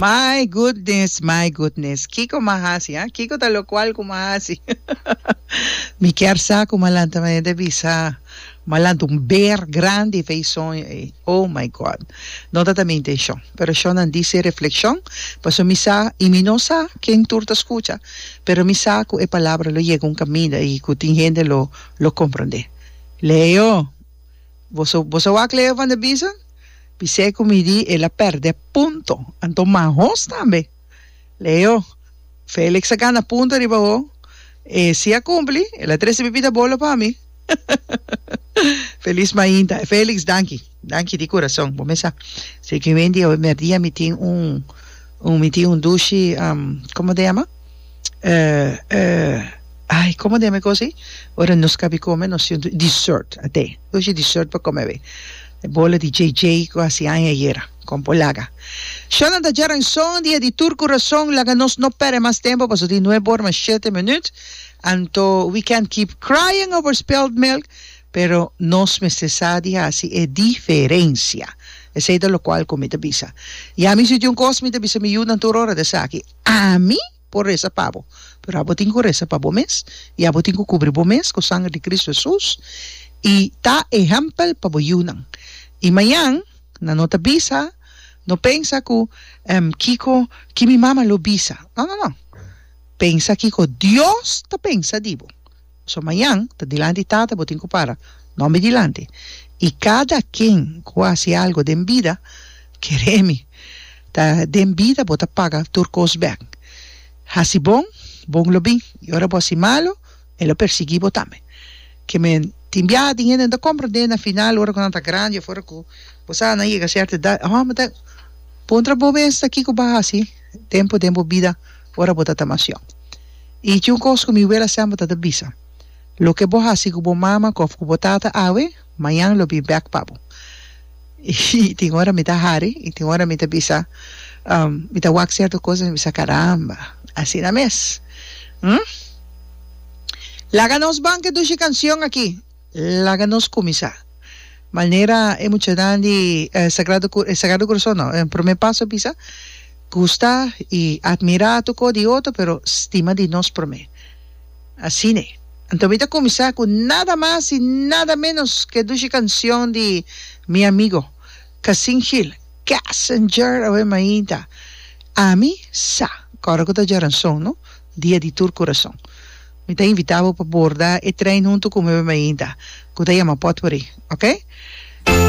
My goodness my goodness kiko ma hasi ha kiko ta lokual ku ma hasi mi kier sa ku ma lanta mi ta bisa ma lanta un beer grandi fe soño ei oh my God no ta ta mi intenshon pero shonnan di se reflekshon paso mi sa i mi no sa ken tur ta skucha pero mi sa ku e palabra lo yega un kaminda i ku tin hende lo lo komprondé Leo. Boso boso wak Leo van der Biesen? Bisé ku mi di el a pèrdè punto, anto mas hos tambe. Leo, Felix a gana punto riba bo, e si a kumpli, el a trese bibida bolo pa mi. Felis mainta. Felix, danki, danki di kurason. Bo mes sa, si e ke wen di awe merdia mi tin un, mi tin un dushi, komo ta yama? ai como deme cosi ora nos cabi come nos siente dessert a te oshi dessert pa come away e bola di JJ cu a haci aña ayera con por laga sho nan ta djara en son dia di tur curason laga nos no perde mas tempo pasobra tin nueb ora mas shete minuut anto we can't keep crying over spilled milk pero nos mester sa di haci e diferencia esey ta locual cu mi ta bisa ya mi si tin un cos mi ta bisa mi yunan tur ora de esaki Ami por resa pa bo, pero abo tin ku resa pa bo mes, i abo tin ku kubri bo mes ku sanger di Kristu Hesus, i ta ehèmpel pa bo yunan. I mañan, nan no ta bisa, no pensa ku, Kiko ki mi mama lo bisa? No, no, no! Pensa kiko Dios ta pensa di bo. So mañan ta dilanti tata bo tin cu para nombe dilanti y cada ken cu haci algo den bida kere mi ta den bida bo ta paga tur cos bek haci bon bon lo bin y ora bo haci malo e lo persigi bo tambe ke me tin biaha tin hende no ta comprende na final ora cu nan ta grandi of ora cu bo sa nan yega certa edad oh me ta bon trabo mes aki cu ba haci tempo den bo bida. Ora bo ta ta masión. I tin un kos ku mi wela semper ta ta bisa, Loke bo hasi ku bo mama òf ku bo tata awe, mañan lo bin bèk pa bo. I tin ora mi ta hari i tin ora mi ta bisa, mi ta wak sierto kos i mi ta bisa, Karamba, asina mes. Laga nos ban ke dushi kansion aki. Laga nos kuminsá. Manera e muchanan di e Sagrado Corazon no, e promé paso a bisa, gusta i atmirá tur kos di otro, pero stima di nos promé. Asine. Anto mi ta kuminsá ku nada mas i nada ménos ku e dushi kanshon di mi amigo Cassin Hill, Cassinger, awe mainta. Ami sa kòrda ku ta djaranson, no? Dia di tur kurason. Mi ta invitá bo pa borda e trein huntu ku mi bai mainta, ku ta yama Potpourri. Oke?